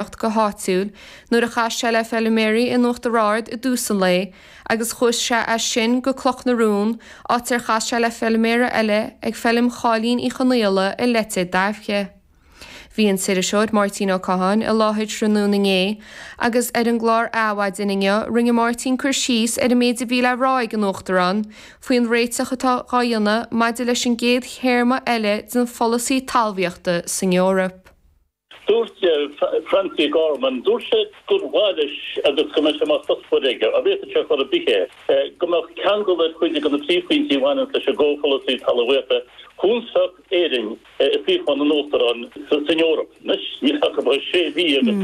Gaeltacht go háitiúil nuair a chas sé le feiliméaraí in Uachtar Ard i dtús an lae agus chuaigh sé as sin go Cloch na Rún áit ar chas sé le feiliméaraí eile ag feilm Cháilín Uí Chonaola i Leitir Daibhche. Bhí an t-iriseoir Máirtín Ó Catháin i láthair tráthnóna inné agus ar an gclár Adhmhaidin inniu rinne Máirtín cur síos ar an méid a bhí le rá ag an Uachtarán faoin réiteach atá dhá dhéanamh maidir leis an gcéad théarma eile den pholasaí talmhaíochta san Eoraip. Dúirt Francie Gorman, dúirt sé gur mhaith leis agus go mbeidh sé mar chuspóir aige, dá bhféadfadh sé chor ar bith é, go mbeadh ceangal ar chuid de na príomhphointí a bhaineanns leis an gComhpholasaí Talmhaíochta chúns tá Éirinn i suíochán an Uachtaráin san Eoraip. Anois, níl ann ach sé mhí agus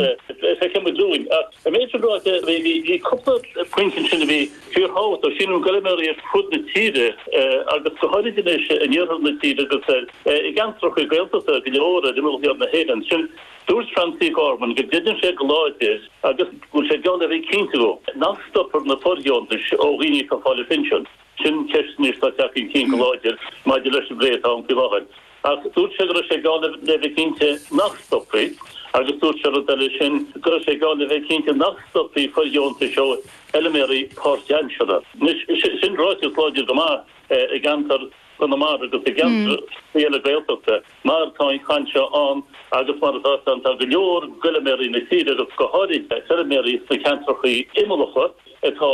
feicfimid uainn. Ach an méid sin ráite, bhí cúpla pointe ansin a bhí fíorthábhachtach. Sílim go raibh feilméaraí ar fud na tíre agus go háirid anois in iarthar na tíre agus ar. I gceantracha Gaeltachta go leor ar imeall thiar na hÉireann sin, dúirt Francie Gorman go gcreideann sé go láidir agus go bhfuil sé ag dul le bheith cinnte de, nach stopfar na fordheontais ó dhaoine atá ag fáil an phinsin. Sin ceist anois atá ag teacht chun cinn go láidir maidir leis an bplé atá ann faoi láthair. Ach dúirt sé go raibh sé ag dul le bheith cinnte nach stopfaí agus dúirt sé rud eile sin, go raibh sé ag dul le bheith cinnte nach stopfaí fordheontais ó fheilméaraí páirtaimseartha. Anois, sin ráiteas láidir go maith i gceantar. Conamara agus i gceantracha eile Gaeltachta, mar tá an chaint seo ann agus mar atá's againn tá go leor d'fheilméaraí na tíre agus go háirithe feilméaraí sna ceantrachaí imeallacha atá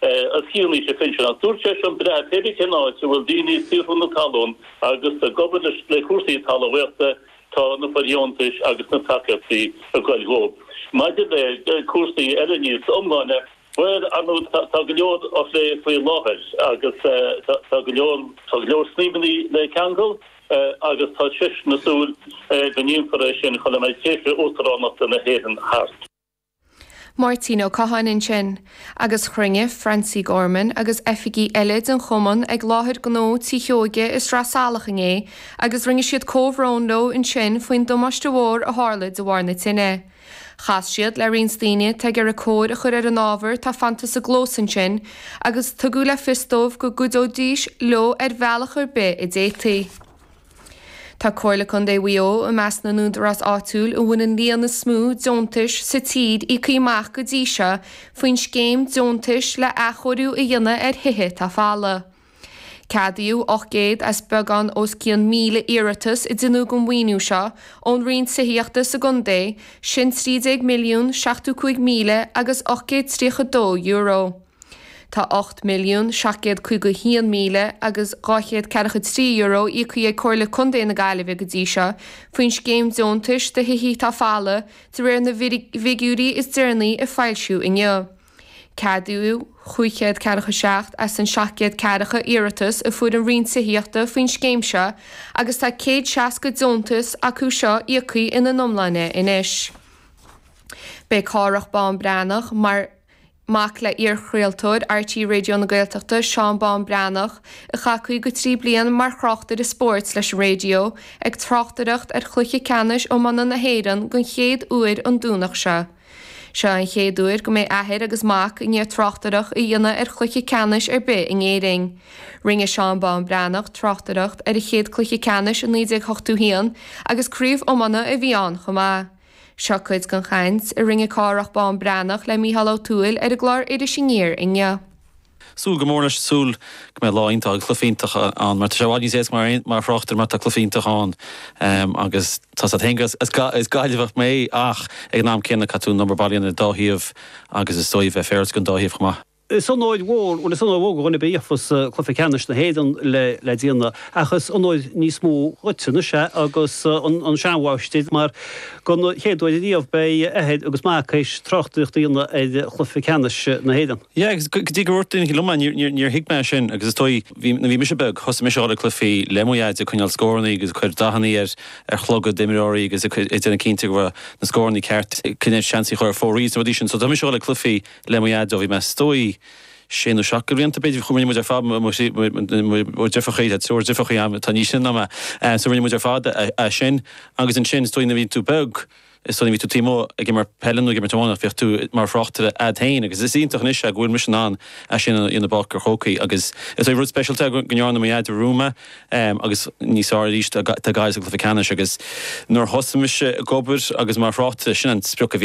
os cionn aois an phinsin. Ach dúirt sé, a fhad is, pé ar bith cén áit a bhfuil daoine ag saothrú na talún agus ag obair ag plé le cúrsaí talmhaíochta tá na fordheontais agus na tacaíochtaí ag goil dhóibh. Maidir le cúrsaí eile níos iomláine, Bhuel, ar ndóigh, tá go leor á phlé faoi láthair agus tá go leor, tá go leor snaidhmeanna le ceangal agus tá seisean ag súil go ndéanfar é sin sula mbeidh tréimhse uachtaránachta na hÉireann thart. Máirtín Ó Catháin ansin. Agus chruinnigh Francie Gorman agus oifigigh eile den Chumann ag láthair gnó Tí Sheoige i Sraith Salach inné agus rinne siad comhbhrón leo ansin faoin damáiste mhór a tharla de bharr na tine. Chas siad le roinnt daoine atá ag iarraidh cóir a chur ar an ábhar atá fanta sa gclós ansin agus tugadh le fios dóibh go gcuideoidís leo ar bhealach ar bith a d'fhéadfaí. Tá Comhairle Contae Mhaigh Eo i measc na n-údarás áitiúil a bhfuil an líon is mó deontais sa tír íoctha amach go dtí seo faoin scéim deontais le athchóiriú a dhéanamh ar thithe atá folamh. Ceadaíodh 800 as beagán os cionn 1,000 iarratas a deineadh don mhaoiniú seo ón Roinn Tithíochta sa gcontae, sin €13,075,832. Tá €8,751,243 íocthaí ag Comhairle Contae na Gaillimhe go dtí seo faoin Scéim Deontais do Thithe atá Folamh de réir na bhfigiúirí is deireanaí a foilsíodh inniu. Ceadaíodh chúig chéad ceathracha seacht as an seacht gcéad ceathracha iarratas a fuair an Roinn Tithíochta faoin scéim seo agus tá céad seasca deontas acu seo íocthaí ina n-iomláine anois. Beidh Cárthach Bán Breathnach mar mhac le iarchraoltóir RTÉ Raidió na Gaeltachta Seán Bán Breathnach a chaith 53 bliain mar thráchtaire spóirt leis an raidió ag tráchtaireacht ar chluiche ceannais iomána na hÉireann den chéad uair an Domhnach seo. Seo an chéad uair go mbeidh athair agus mac i ndiaidh tráchtaireacht a dhéanamh ar chluiche ceannais ar bith in Éirinn. Rinne Seán Bán Breathnach tráchtaireacht ar a chéad chluiche ceannais i 1981 agus craobh iomána a bhí ann chomh maith. Seo cuid den chaint a rinne Cárthach Bán Breathnach le Mícheál Ó Tuathail ar an gclár Iris Aniar inniu. Súil go mór leis, súil go mbeidh lá iontach agus cluiche iontach ann mar tá sé i bhfad níos éasca mar, mar thráchtaire má tá cluiche iontach ann agus tá said féin go, is Gaillimheach mé ach ag an am céanna caithfidh tú an number bailíonn ar an dá thaobh agus is dóigh bheith féaráilte go an dá thaobh chomh maith. Is onóir mhór, bhuel is onóir mhór go dhuine ar bith a gheofas cluiche ceannais na hÉireann le le déanamh ach is onóir níos mó dhuitse anois é agus an an seanmháistir mar don chéad uair riamh beidh athair agus mac théis tráchtaireacht a dhéanamh ar chluiche ceannais na hÉireann. Yeah, agus go dtí go dúirt daoine liom é, níor thuig mé sin agus is dóigh, nuair a bhí mise beag, thosaigh mise a dhul ag cluichí le mo Dheaid, ag coinneáil scórannaí agus ag cur dathannaí ar chlogaid d'imreoirí agus ag déanamh cinnte go raibh na scórannaí ceart, coinne, seansaí a chur ar fóraoil is na rudaí sin. So, thosaigh mise a dhul ag cluichí le mo Dheaid ó bhí mé, is dóigh, sé nó seacht de bhlianta, b'fhéidir. Chuaigh muid ar fad, mo thrí, mo dheirfiúrachaí, tá triúr deirfiúrachaí agam atá níos sine ná mé, so rinne muid ar fad é sin agus ansin, is dóigh nuair a bhíonn tú beag, Is dóigh bhíodh tú taobh amuigh ag imirt peile nó ag imirt iomána, bhíodh tú mar thráchtaire a'd féin agus is iontach anois é go bhfuil mise in ann é sin a dhéanamh i bPáirc an Chrócaigh agus is dóigh rud speisialta é go ndeárna mo dhaid romham é agus níos fearr arís tá Gaillimh sa gcluiche ceannais agus nuair thosaigh mise ag obair agus mar thráchtaire sin an sprioc a bhí